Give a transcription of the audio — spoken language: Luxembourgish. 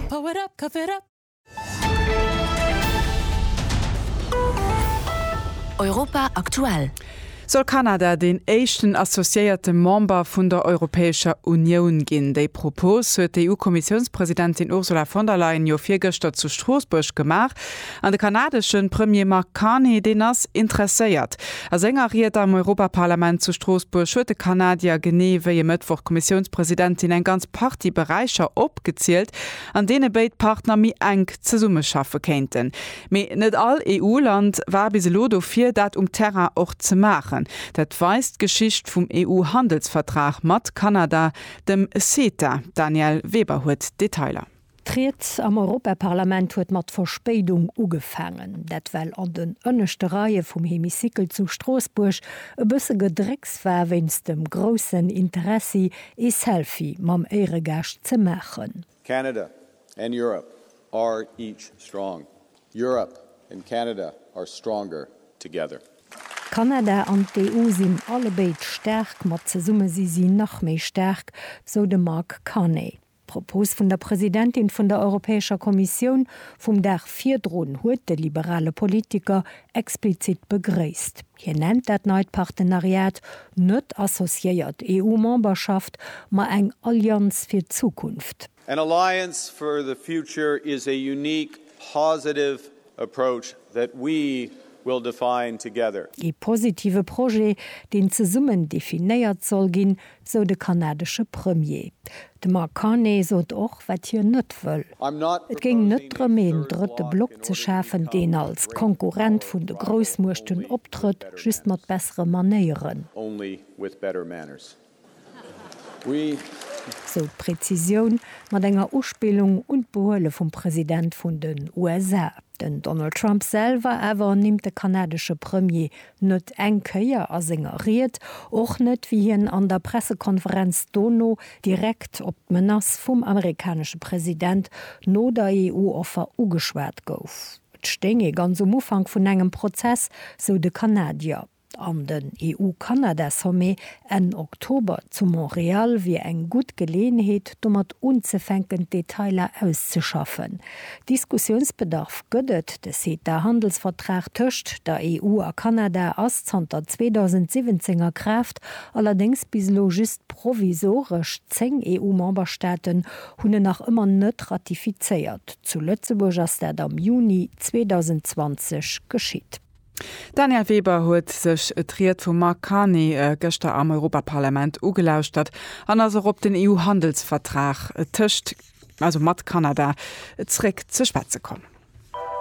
Power up, cough it up! Europa aktuell. Soll Kanada deen éischten associéierte Member vun der Europäescher Unioun ginn? Déi Propos huet d'EU-Kommissiounspresidentin Ursula von der Leyen jo virgëschter zu Stroossbuerg gemaach. An de kanadeschen Premier Mark Carney, deen ass interesséiert. A senger Ried am Europaparlament zu Stroossbuerg huet de Kanadier genee wéi e Mëttwoch d'Kommissiounspresidentin eng ganz Partie Beräicher opgezielt, an deene béid Partner méi enk zesummeschaffe kéinten. Mee net all EU-Land war bis elo dofir, dat um Terrain och ze maachen. Dat weist d'Geschicht vum EU-Handelsvertrag mat Kanada, dem CETA. D'Danièle Weber huet d'Detailer. D'Ried am Europaparlament huet mat Verspéidung ugefaangen. Dat well an den ënneschte Reie vum Hemicycle zu Stroossbuerg e bësse Gedrécks war wéinst dem groussen Interessi ee Selfie mam Éieregaascht ze maachen. Canada and Europe are each strong. Europe and Canada are stronger together. Kanada an d'EU sinn allebéid staark, mat zesumme si si nach méi staark, sou de Mark Carney. D'Propos vun der Presidentin vun der Europäescher Kommissioun vum Dag virdrun huet de liberale Politiker explizit begréisst. Hien nennt dat neit Partenariat net associéiert EU-Memberschaft, ma eng Allianz fir d'Zukunft. An alliance for the future is a unique positive. approach that we will define together. Ee positive Projet, deen zesummen definéiert soll ginn, sou de kanadesche Premier. De Mark Carney sot och, wat hien net wëll. Et géing net drëm een drëtte Block ze schafen, deen als Konkurrent vun de Groussmuechten optrëtt, just mat bessere Manéieren. Sou d'Präzisioun, mat enger Uspillung un d'Behuele vum President vun den USA. Den Donald Trump selwer awer nimmt de kanadesche Premier net eng Kéier a senger Ried, och net wéi hien an der Pressekonferenz dono direkt op d'Menace vum amerikanesche President no der EU-Offer ugeschwat gouf. Et stéing ee ganz um Ufank vun engem Prozess, sou de Kanadier. An den EU-Kanada-Sommet Enn Oktober zu Montreal wier eng gutt Geleeënheet, domat unzefänken, d'Detailer auszeschaffen. Diskussiounsbedarf gëtt et, De CETA-Handelsvertrag tëscht der EU a Kanada ass zanter 2017 a Kraaft, allerdéngs bis elo just provisoresch. Zéng EU-Memberstaaten hunn en nach ëmmer net ratifizéiert. Zu Lëtzebuerg ass dat am Juni 2020 geschitt. D'Danièle Weber huet sech d'Ried vum Mark Carney gëschter am Europaparlament ugelauschtert an ass och op den EU-Handelsvertrag tëscht, also mat Kanada, zréck ze schwätze komm.